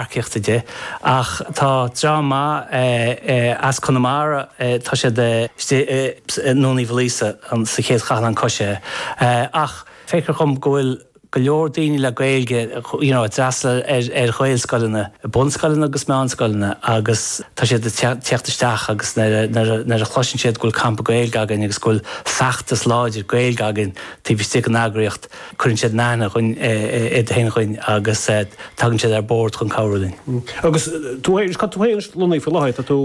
earcaíochta de, ach tá dream maith as Conamara, tá siad istigh i nDún Uí Mhaoilíosa sa chéad chathlán coisithe. Ach feictear dhom go bhfuil go leor daoine le Gaeilge you know a d'fhreastail ar Ghaelscoileanna, bunscoileanna agus meánscoileanna agus tá siad ag teacht isteach agus nuair a chloiseann siad go bhfuil campa Gaeilge againn agus go bhfuil feachtas láidir Gaeilge againn taobh istigh den eagraíocht, Cuireann siad in aithne iad féin dhuinn agus tagann siad ar bord chun cabhrú linn. Agus tú féin, cá bhfuil tú féin lonnaithe faoi láthair, tá tú.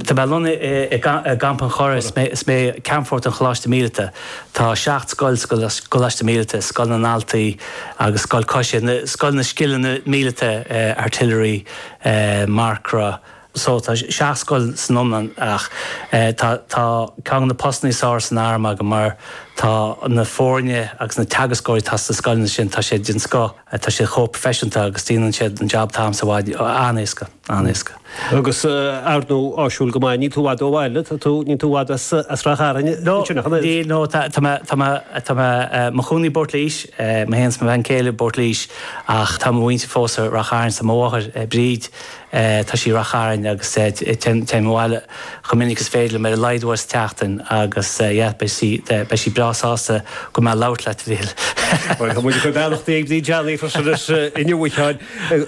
Tá mé lonnaithe i gCampa an Churraigh, is mé Ceannfort an Choláiste Míleata. Tá seacht scoil sa gColáiste Míleata, Scoil na nDaltaí agus Scoil Coisithe, Scoil na Scileanna Míleata, Artillery, Marcra, so tá seacht scoil san iomlán ach tá ceann de na postannaí is fearr san arm agam mar tá na foirne agus na teagascóirí atá sna scoileanna sin tá siad den scoth, tá siad chomh proifisiúnta agus déanann siad an jab t'agamsa i bhfad, an-éasca, an-éasca. Agus ar ndóigh áisiúil go maith, níl tú i bhfad ó bhaile, tá tú, níl tú i bhfad as Rath Chairn, ansin nach bhfuil? Níl, no, tá, tá mé, tá mé, tá mé i mo chónaí i bPort Laois, mé féin is mo bhean céile i bPort Laois ach tá mo mhuintir fós i Rath Chairn, so mo mháthair Bríd, Tá sí i Rath Chairn agus téim abhaile chomh minic is féidir liom, ar a laghad uair sa tseachtain agus yeah, beidh sí breá sásta go mbeidh mé ag labhairt leat, a Mhíchíl. Bhuel, tá muid ag cur beannachtaí ag Bríd Shanley freisin inniu, a Sheáin,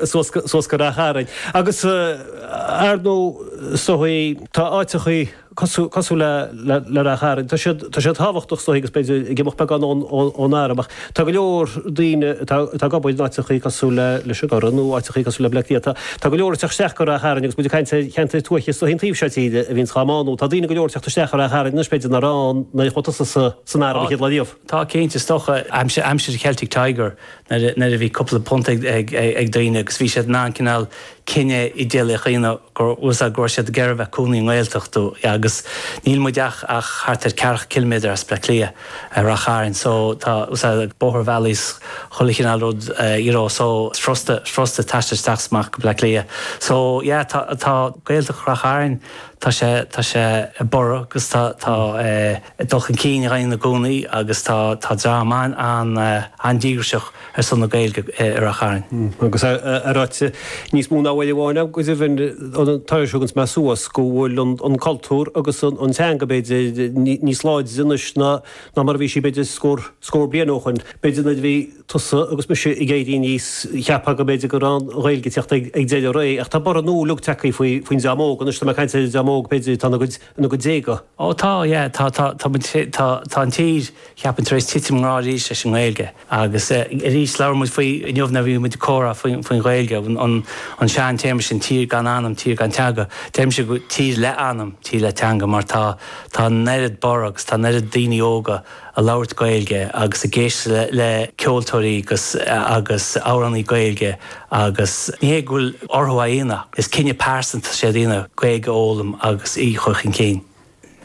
suas go Rath Chairn. Agus, ar ndóigh, tá áiteachaí. cosúil le Ráth Chairn. Tá siad tábhachtach is dóigh agus b'fhéidir ag imeacht beagán ón arm ach tá go leor daoine atá ag obair in áiteachaí cosúil leis an gCurrach nó áiteachaí cosúil le Bleá Cliath, tá go leor ag teacht isteach go Rath Chairn agus muid ag caint ar cheantair tuaithe is dóigh an taobh seo tíre a bhíonns dhá mbánú. Tá daoine go leor ag teacht isteach go Rath Chairn anois b'fhéidir nach raibh ann nuair a chuaigh tusa san arm an chéad lá riamh. Tá cinnte, is dócha aimsir Celtic Tiger nuair a bhí cúpla punt ag daoine agus bhí siad in ann cineál cinneadh idéalaíoch a dhéanamh you know go raibh siad ag iarraidh a bheith ina gcónaí i nGaeltacht agus níl muid ach ach thart ar ceathracha ciliméadar as Bleá Cliath i Rath Chairn so tá na mótarbhealaí 's chuile chineál rud you know so is frusta frusta taisteal isteach 's amach go Bleá Cliath so yeah tá tá Gaeltacht Rath Chairn tá sé tá sé ag borradh agus tá tá ag dul chun cinn i gcónaí i gcónaí agus tá tá dream an an an díograiseach ar son na Gaeilge i Rath Chairn. Agus é ráite níos mó ná uair amháin agam, go deimhin, tar éis dhom a bheith thuas, go bhfuil an cultúr agus an teanga, b'fhéidir, níos láidre anois ná mar a bhí sí, b'fhéidir, scór, scór bliain ó shoin. B'fhéidir nuair a bhí tusa agus mise ag éirí aníos, cheapfá go mb'fhéidir go raibh an Ghaeilge ag teacht ag deireadh a ré, ach tá borradh nua uilig tagtha faoi, faoin dream óg anois. Tá mé ag caint ar an dream óg, b'fhéidir, atá ina gcuid, ina gcuid déaga. Ó tá, yeah, tá, tá, tá muid, tá, tá an tír, cheapfainn, tar éis titim i ngrá arís leis an nGaeilge. Agus arís, labhair muid faoi inniu nuair a bhí muid ag comhrá faoin Ghaeilge, an sean téarma sin, tír gan anam, tír gan teanga. Deirimse, tír le anam, tír le teanga, mar tá, tá an oiread borradh agus tá an oiread daoine óga ag labhairt Gaeilge agus ag éisteacht le ceoltóirí agus, agus amhránaí Gaeilge agus ní hé go bhfuil orthu é a dhéanamh ach is cinneadh pearsanta atá siad a dhéanamh Gaeilge a fhoghlaim agus í a chur chun cinn.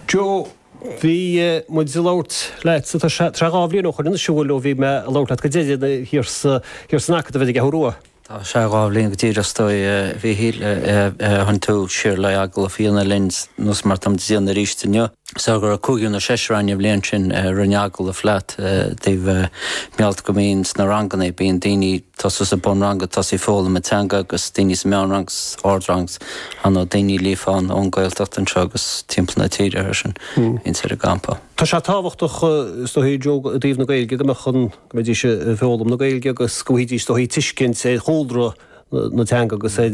Joe, Bhí muid ag labhairt leat is dócha trí, dhá bhliain ó shoin, siubhail, ó bhí mé ag labhairt leat go deireanach thiar sa, thiar san Acadamh ar an gCeathrú Rua. Tá sé dhá bhliain go díreach is dóigh, a Mhíchíl, ó tháinig tú siar le agallamh a dhéanamh linn, nós mar atá muid a dhéanamh aríst inniu. Sea go raibh cúigear nó seisear ann an bhliain sin a rinne agallamh leat Déarfainn, a Mhíchíl, go mbíonn sna ranganna, bíonn daoine, tosú sa mbunrang ag tosaí ag foghlaim na teanga agus daoine sa meánrang 's ardrang 's a lán daoine líofa ann ón Gaeltacht anseo agus timpeall na tíre mar sin ins ar an gcampa. Tá sé tábhachtach is dóigh i dtreo i dtaobh na Gaeilge go mbeadh an go mbeidís ag foghlaim na Gaeilge agus go bhfaighidís is dóigh tuiscint ar chúlra na teanga agus ar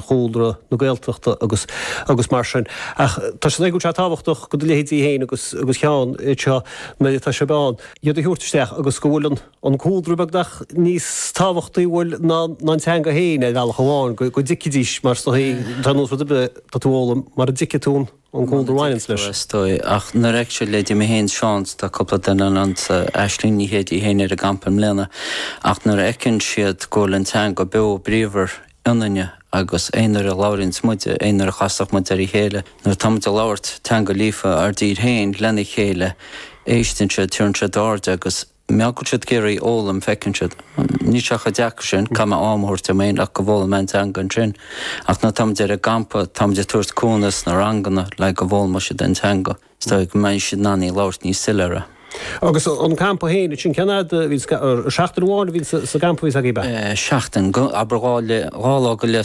chúlra na Gaeltachta agus agus mar sin ach tá sé go sé tábhachtach go do leithéidí féin agus agus Sheán anseo nuair atá sibh ann iad a thabhairt isteach agus go bhfuil an an cúlra beag nach níos tábhachtaí b'fhéidir ná an teanga féin, ar bhealach amháin, go dtuigfidís, mar is dóigh, tá aon nós rud ar bith atá tú a fhoghlaim, mara dtuigfidh tú an cúlra a bhaineann leis. is dóigh, ach nuair a fheiceann siad leithéidí mé fhéin Seán, tá cúpla duine anso, Aisling Ní Chéide í fhéin ar an gcampa i mbliana, ach nuair a fheiceann siad go bhfuil an teanga beo bríomhar ionainne agus aon uair a labhraíonns muide, aon uair a chasann muid ar a chéile, nuair atá muid ag labhairt teanga líofa ár dtíre féin lena chéile, éisteann siad, tugann siad aird agus. Bíonn siad ag iarraidh í a fhoghlaim, feiceann siad. Níl sé chomh deacair sin, caithfidh mé am a thabhairt dom féin ach go bhfoghlaimeoidh mé an teanga ansin. Ach nuair atá muid ar an gcampa, tá muid ag tabhairt cúnamh sna ranganna le go bhfoghlaimeoidh siad an teanga, is dóigh, go mbeidh siad in ann í a labhairt níos soiléire. Agus an campa féin, ansin, cén fhad a bhí, seachtain amháin a bhí sa gcampa a bhí agaibh, a? Seachtain, abair dhá lá go leith.